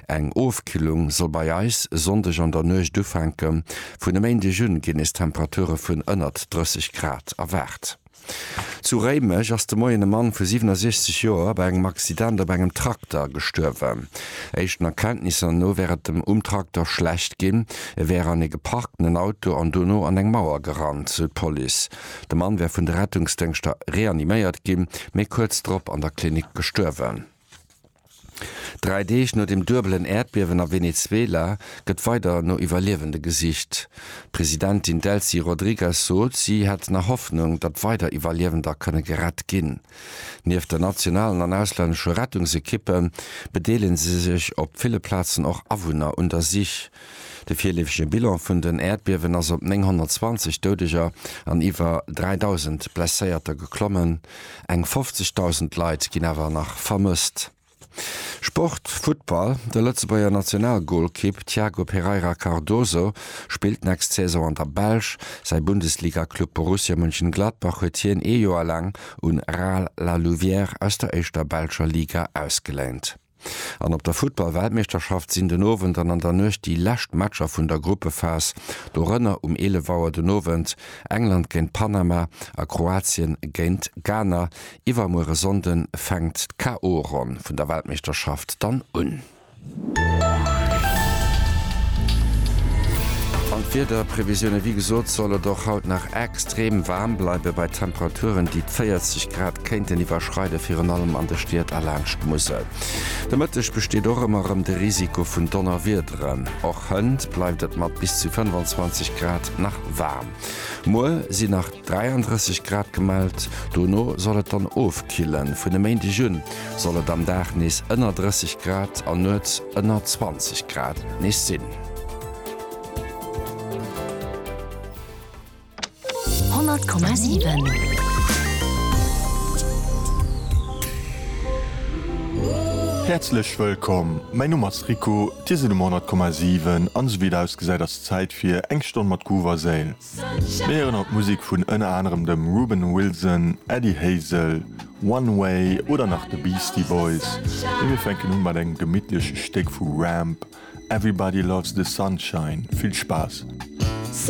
Eng Ofkillung soll bei eis e Sonndeg an der Nuecht ufänken. Vun e Méindeg un ginn nees Temperature vun ënnert 30 Grad erwaart. Zu Réimech ass de Moien e Mann vu 67 Joer bei engem Accident op engem Trakter gestuerwen. Éischten Erkenntnisser no wär et dem um Trakter schlecht ginn. E wär an ee geparkten Auto an dono an eng Mauer gerannt, sou d'Police. De Mann wär vun de Rettungsdéngschter reaniméiert ginn, mee kuerz drop an der Klinik gestuerwen. Dräi Deeg no dem duebelen Äerdbiewen a Venezuela gëtt weider no Iwwerliewende gesicht. D'Presidentin Delcy Rodrigues sot, si hätt nach Hoffnung, datt weider Iwwerliewender kënne gerett ginn. Nieft der nationalen an auslännesche Rettungsekippe bedeelege sech op ville Plazen och Awunner un der Sich. De virleefege Bilan vun den Äerdbiewen ass op 920 Doudeger an iwwer 3.000 Blesséierter geklommen, eng 50.000 Leit ginn awer nach vermësst. Sport, Futtball, De Lëtzebuerger Nationalgolkipp Thiago Pereira Cardoso spillt d'nächst Saison an der Belsch. Säi Bundesliga-Club Borussia Mönchengladbach huet hien ee Joer laang un Rail La Louvière aus der éischter belscher Liga ausgeléint. An op der Futtball-Weltmeeschterschaft sinn den Owend an an der Nuecht déi lescht Matcher vun der Gruppephas, dorënner um 11 Auer den Owend England géint Panama a Kroatien géint Ghana. Iwwermuere Sonnden fänkt d'KO-Ronn vun der Weltmeeschterschaft dann un. An d'Wiederprevisioune, wéi gesot, soll et och haut nach extrem waarm bleiwen, bei Temperaturen déi d' 40 Grad Kéinten iwwerschreiden, virun allem an de Stied a laanscht d'Musel. De Mëtteg besteet och ëmmer erëm de Risiko vun Donnerwiederen. Och hënt bleift et mat bis zu 25 Grad nach waarm. Muer sinn nach 33 Grad gemellt, dono soll et dann ofkillen. Vun e Méindeg un soll et am Dag nees ënner 30 Grad an nuets ënner 20 Grad nees sinn. Häerzlech wëllkomm, mäin Numm ass Rico, dir sidd um 100,7 an esou wéi et ausgesäit ass Zäit fir eng Stonn mat Groove a Séil. Mir héieren haut Musek vun ënner anerem dem Reuben Wilson, Eddie Hazel, One Way oder nach de Beastie Boys, mee mir fänken u mat engem gemittleche Stéck vu Ramp, Everybody Loves The Sunshine. Vill Spaass!